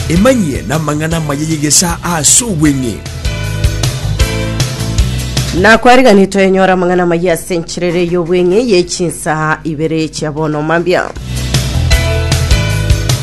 Emanyie namang'ana amaya y'egesaa ase obweng'e. Na kwariganire twenyora amang'ana amaya ase enchera ere y'obweng'e ye chinsaha ibere chia bono mambia.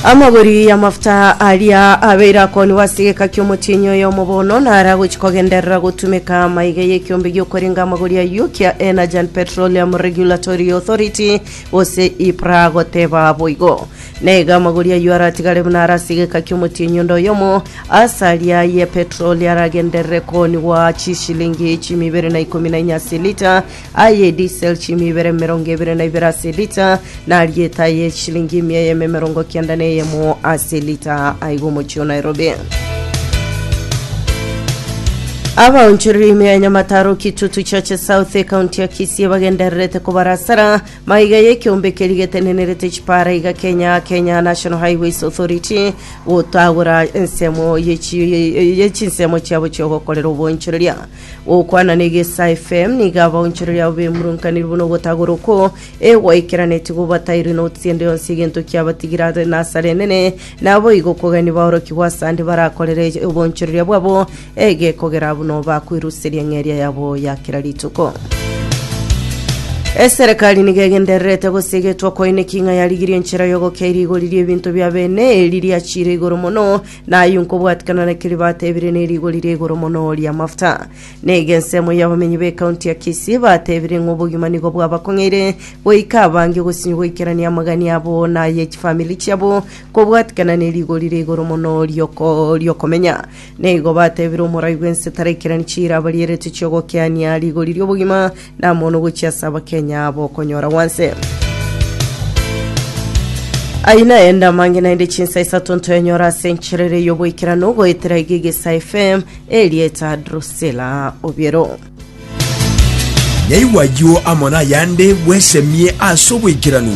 Amagori y'amafuta aria abeire akoniwa ase egeka ki'omotienyi oyomo bono nare agochi kogenderera gotumeka maiga y'ekiombe gi'okorenga amagori ayio kia Energy and Petroleum Regulatory Authority gose EPRA goteba boigo. Naiga amagori ayio aratigare buna are ase egeka ki'omotii o nyundo oyomo. Ase aria aye Petero oria aragenderere koonigwa chisilingi chimu ibere na ikomi na inye ase elita, aye edisel chimu ibere emerongo ebere na ibere ase elita, na aria eta aye chisilingi emia eyemo emerongo kenda na eyemo ase elita. Aiga omochie o Nairobi. Abaonchoreri ime ya Nyamataro Kitutu Churches South ecounty ya Kisii bagendererete kobarasara Maiga y'ekeombe keria getenenerete chipaara iga Kenya, Kenya National Highways Authority, gotagora ensemo ye chinsemo chiabo chi'ogokorera oboonchoreria. Gokwana n'egesa FM, nigo abaonchoreria abo bemurunkanire buna ogotagora okwo e gwaikeranetie gobatairwe notisi ende yonsi egento kiabatigire ase nasara enene, naboigo okogania baorokigwe ase ande barakorere oboonchoreria bwabo Egekogera abwo noba kweruseria ng'eria yabo ya kera rituko. Eserekari nigo egendererete gosegetwa kwaine ki ng'a yarigirie enchera y'ogokeiria igori ri'ebinto bia bene, eri riachiire igoro mono, na ayio nkobwatikana na keria bateebire ne rigori ria igoro mono ri'amafuta. Nigo ensemo y'abamenyi b'ekaunti ya Kisii bateebire ng'a obogima nigo bwabakong'eire goika abange gosinywa goikerania amagani abo na ay'echifamiri chiabo kobwatikana ne rigori ria igoro mono ri'oko- ri'okomenya. Na igo batebire omorai bw'ense taraikerani chiira abarieretwe chi'ogokeania rigori ri'obogima namono gochia ase abakenya abo okonyora gwanse. Ayio naende amange naende chinsa isato ntoenyora ase encherere y'oboikeranu goetera iga egesa FM erieta Drusilla Obiero. Nyaigwa ayio amo nayande bwesemie ase oboikeranu.